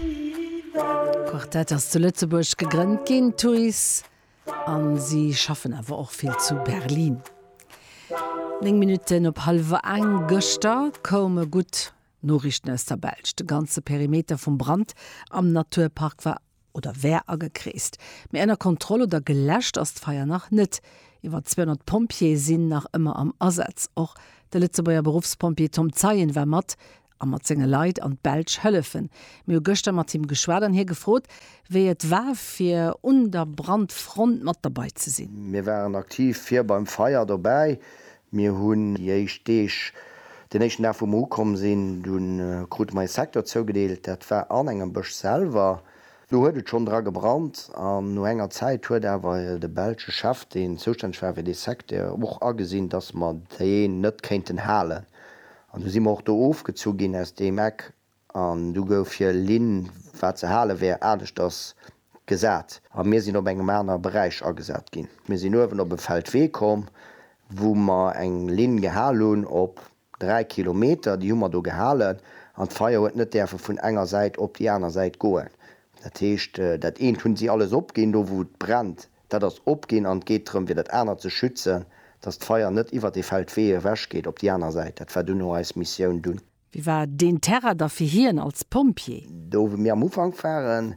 D'Quartett ass zu Lëtzebuerg gegrënnt ginn, Thuis, a si schaffen awer och vill zu Berlin. Néng Minutten op hallwer eng gëschter koume gutt Noriichten aus der Belsch. De ganze Perimeter vum Brand am Naturpark war oder wär agekreest, mee ënner Kontroll oder geläscht ass d'Feier nach net. Iwwer 200 Pompjeeë sinn nach ëmmer am Asaz. Och de Lëtzebuerger Beruffspompjee Tom Zeien war mat a mat senge Leit an d'Belsch hëllefen. Mir hu gëschter mat him geschwat an hie gefrot, wéi et war fir un der Brandfront mat derbei ze sinn. Mir waren aktiv vir beim Feier dobäi. Mir hunn déi éischt Deeg, den éischten Dag wou mer ukomm sinn, du krute mer ee Secteur zougedeelt, dat war an engem Bësch selwer. Do huet et schonn dra gebrannt an no enger Zäit huet awer de belsche Chef, deen zoustänneg war fir dee Secteur, och agesinn, datt mer deen net kéinten halen An du si mer och do ofgezu ginn aus deem Eck, an du gouf hir Linn, wat ze hale wär, aneschters gesat, a mir sinn op engem aner Beräich agesat ginn. Mir sinn uewen op e Feldwee komm, wou mer eng Linn gehal hunn op dräi Kilometer, déi hu mer do gehalen, an d'Feier huet net däerfe vun enger Säit op déi aner Säit goen. Dat heescht, dat eent hunn si alles opginn, do wou et brennt. Dat ass opginn an et geet drëm, fir dat anert ze schützen, dass d'Feier net iwwert dee Feldwee ewechgeet op déi aner Säit. Dat war duerno eis Missioun dunn. Wéi war deen Terrain da fir hien als Pompjee? Do wou mir am Ufank waren,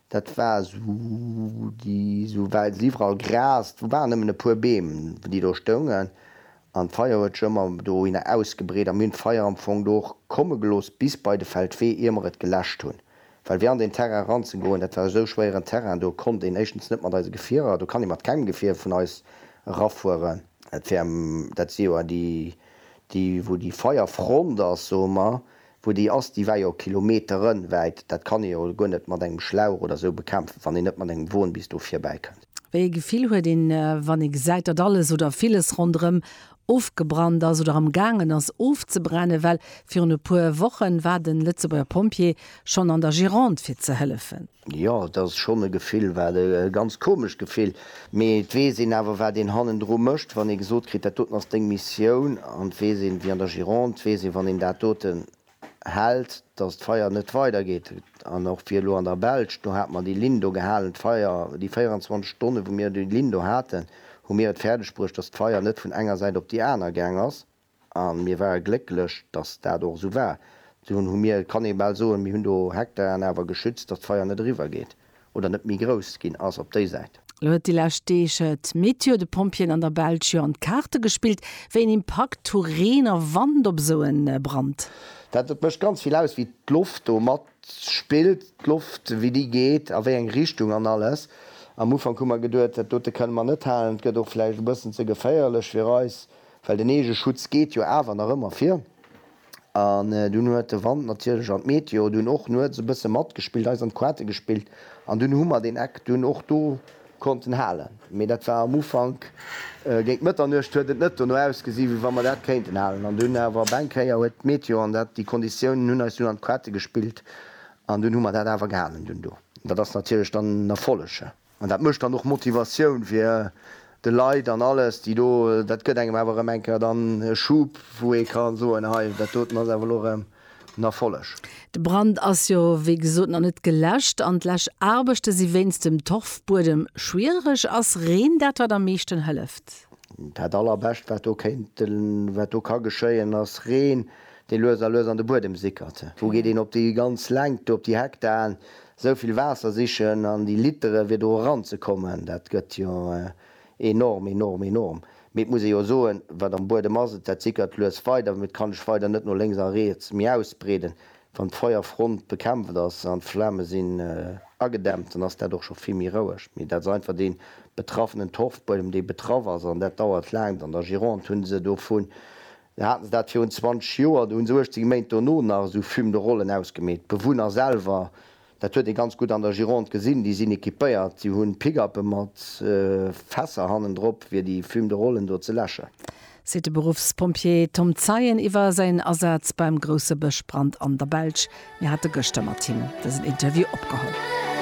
dat war esou déi esou Wäiz, iwwerall Gras, do waren nëmmen e puer Beem, déi do stoungen. An d'Feier huet sech ëmmer dohinner ausgebreet a mir hunn d'Feier am Fong do och komme gelooss bis bei de Feldwee, ier mer et geläscht hunn. Well fir an deen Terrain eranzegoen, dat war esou schwéieren Terrain, do konnt een éischtens net mat eise Gefierer, do kann ee mat kengem Gefier vun eis erafueren. Dat war, dat si jo déi, déi wou déi Feierfront ass, soe mer, Wou déi ass, déi war jo kilometerenwäit, dat kann ee jo guer net mat engem Schlauch oder sou bekämpfen, wann een net mat engem Won bis do virbäi kënnt. Wéi ee Gefill huet een, wann ee gesäit, datt alles oder villes ronderëm ofgebrannt ass oder am gaangen ass ofzebrennen? Well virun e puer Wochen war de Lëtzebuerger Pompjee schonn an der Gironde fir ze hëllefen. Jo, et ass schonn e Gefill, wat e ganz komescht Gefill, mee et weess een awer, wat een hannendru mécht. Wann ee gesot kritt, dat doten ass deng Missioun, an et weess een, wéi an der Gironde, et weess een, wann een dat doten hält, datt d'Feier net weidergeet. An och fir elo an der Belsch, do hat mer déi Linn do gehalen, d'Feier, déi 24 Stonne wou mir déi Linn do haten, hu mir et fäerdegbruecht, datt d'Feier net vun enger Säit op déi aner gaang ass. A mir ware glécklech, datt dat och esou war. Dunn hu mir, et kann ee bal soen, mir hunn do Hektaren awer geschützt, datt d'Feier net eriwwer geet oder net méi grouss ginn ass op déi Säit. Elo huet déi lescht Deeg d'Meteo de Pompjeeën an der Belsch jo an d'Kaarte gespillt. Wéi een Impakt hu Reen a Wand op esou en Brand? Dat et mécht ganz vill aus, wéi d'Loft do matspillt, d'Loft wéi déi geet a wéi eng Richtung an alles. Am Ufank hu mer geduet, dat dote kënne mer net halen, et gëtt och vläicht e bëssen ze geféierlech fir eis. Well den Eegeschutz geet jo awer nach ëmmer vir. An dunn huet de Wand natierlech an d'Meteo dunn och nuets e bësse matgespillt, eis an d'Quarte gespillt. An dunn hu mer deen Eck dunn och do konnten halen. Mee dat war am Ufank, géint Mëtternuecht huet et net dono ausgesi wéi wa mer dat kéinten halen. An dunn awer op eng Kéier huet d'Meteo an dat, déi Konditiounen hunn eis dunn an d'Quarte gespillt. An dunn hu mer dat awer gehalen dunn do. Dat ass natierlech dann en Erfolleg. An dat mécht dann och Motivatioun fir de Leit an alles, déi do, dat gëtt engem awer erëm eng Kéier dann e Schub, wou ee ka soen, hei, dat doten ass awer elo erëm en Erfolleg. De Brand ass jo wéi gesot nach net geläscht an d'Läschaarbechte si wéinst dem Torfbuedem schwiereg. Ass Reen dat, wat am meeschten hëlleft? Dat Allerbescht, wat do kéint, wat do ka geschéien, ass Reen, dee lues a lues an de Buedem sickert. Wou geet een op déi ganz Längt do, op déi Hektaren, Esou vill Waasser sichen an déi Litere fir do eran ze kommen, dat gëtt jo enorm, enorm, enorm. Mee et muss ee jo soen, wat am Buedem ass, et dat sickert lues weider, mee et kann sech weider net no lénks a riets méi ausbreeden. Wann d'Feuerfront bekämpft ass an d'Flame sinn agedämpt, dann ass dat och scho vill méi roueg. Mee dat ass einfach dee betraffenen Torfbuedem, dee betraff ass an dat dauert laang. An der Gironde hu se dovun Da haten se dat virun 20 Joer, do hunn se 18 Méint dono nach esou Fume de Rollen ausgemeet. D'Bewunner selwer, dat huet ee ganz gutt an der Gironde gesinn, déi sinn equipéiert, déi hunn Pick-uppe mat Fässer hannendrop fir déi Fume de Rollen do ze läschen. Seet de Beruffspompjee Tom Zeien iwwer säin Asaz beim grousse Bëschbrand an der Belsch. Mir hate gëschter mat him dësen Interview opgeholl.